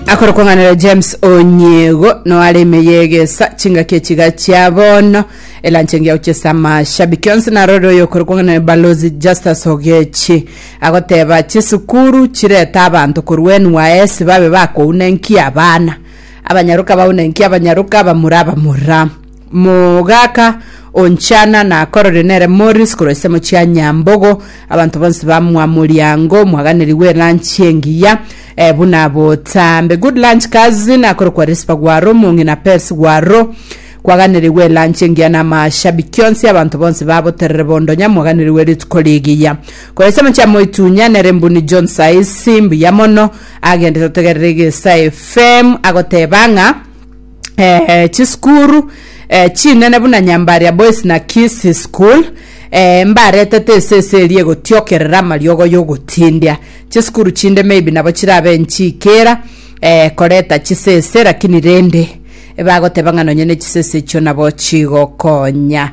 akore kwang'anera james onyiego noare ime yegesa chingaki echiga chia bono elanche engiya gochesa amashabiki onsi narore oyo okore kwang'anera balozi justus ogechi agoteba chisukuru chirete abanto korwa nys babe bakouna enki abana abanyaroka baune enki abanyaroka abamura abamura Mogaaka o nchana nakororire nere Morris korwa chisemo chia Nyambogo, abanto bonsi bamwa moriango omwaganeri w'eranchi engiya eh, buna botambe. Good lunch cousin akorokwa Rispa Gwaro, omong'ina Pes Gwaro kwaganerirwe eranchi engiya na amashabiki onsi abanto bonsi ba Boterere bondo nyamwaganirwe rituko rigiya. Korwa chisemo chia Moitunya nere Mbuni John Saisi mbuya mono agende totegerere egesa FM agoteba ng'a eh, chisukuru eh, chinene buna nyambaria boys na kisi school eh, mbaretete esese eria egotiokerera amariogo y'ogotindia chisukuru chinde maybe nabo chirabe nchiikera eh, koreta chisese lakini rende bagoteba ng'a nonye ne chisese echio nabo chigokonya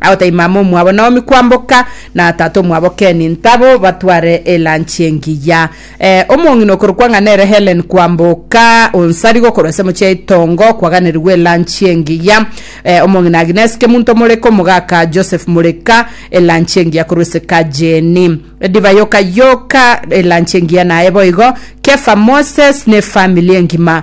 Agotebia mama omwabo Naomi kwamboka na tata omwabo Ken ntabo batware elanchi engiya. Eh, omong'ina okorokwa ng'a nere Helen kwamboka onsari gokorwa ase mochie ya itongo kwaganerigwa elanchi engiya. Eh, omong'ina Agnes Kemunto Moreka omogaka Joseph Moreka elanchi engiya korwa ase kajeni. Edivai yoka yoka elanchi engiya naye boigo Kefa Moses ne efamili engima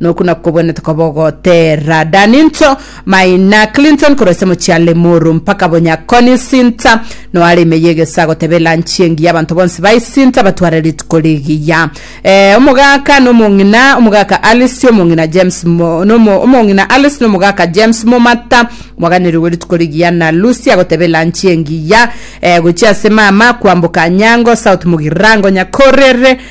Noku nakobwenete koba ogoteera Danito, Maina, Clinton korwa ase mochie a Limuru mpaka Bonyakoni sinta noare ime y'egesaa goteba elanchi engiya abanto bonsi bae sinta batware rituko rigiya. Eh, omogaka nomong'ina, omogaka Alice, omong'ina James mo, nomo, omong'ina Alice nomogaka James momata mwaganerirwe rituko rigiya na Lucia goteba elanchi engiya eh, gochia ase mama kwamboka Anyango South Mugirango Nyakorere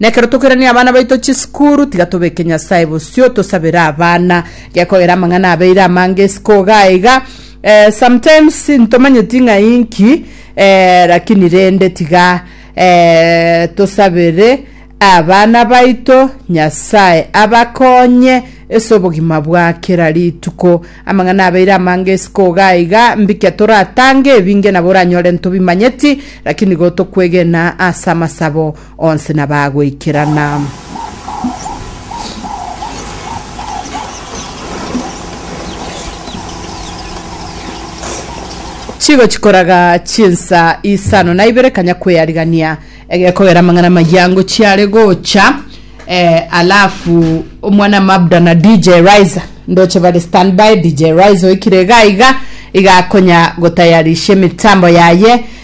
Nekero tokoirania abana baito chisukuru, tiga tobeke Nyasae bosio, tosabere abana. Gekogera amang'ana abeire amange isiko iga aiga, eh, sometimes ntomanyeti ng'a inki, eh, lakini rende tiga, eh, tosabere abana baito Nyasae abakonye ase obogima bwa kera rituko. Amang'ana abeire amange isiko iga aiga, mbikia toratange, ebinge nabo oranyore ntobimanyeti, lakini gotokwegena ase amasabo Onsi na bagoikerana. Chigochi koraga chinsa isano na ibere kanya kwearigania egekogera amang'ana amayia ango chiare gocha eh, alafu omwana mabda na dj riser ndoche bari standby dj riser oikire iga iga igakonya gotayarishia emitambo yaye